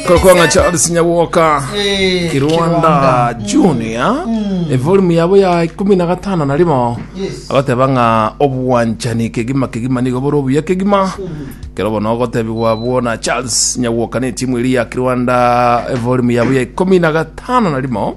kokonga charles nyabwoka Eh, kirwanda junior evolume yabo ya ikumi na gatano na rimo Yes. agoteba ng'a obwanchani kegima kegima nigo bore obuya kegima kero bono ogotebigwa abwo na charles nyabwoka na etimu eri ya kirwanda evolume yabo ya ikumi na gatano na rimo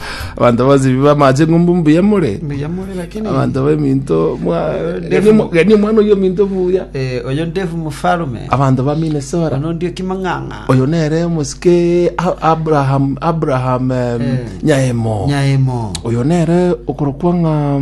Abanto bonsi biba amache ng'umbu mbuya more. Mbuya more lakini Abanto b'eminto mwa genie mo- genie omwana oyo ominto buya. eh, oyo ndefu mofarume Abanto ba Minnesota. ono ndio kimang'ang'a Oyo nere omosike A- Abraham Abraham em, Eh. Nyaemo. nyaemo Oyo nere okorokwa ng'a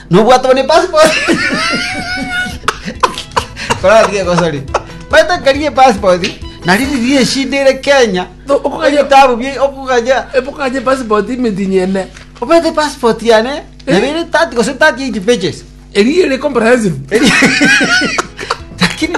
Nobwate bono epasipoti. Korora tiga egosori. Baete nkarigia epasipoti, nari riria eshida ere Kenya, No, okoganya- ebitabu bie okoganya Ebokanye epassport imetinyi ene. obete epasipoti yane nabo ere 30 gose 38 pages. Eri ere comprehensive. Lakini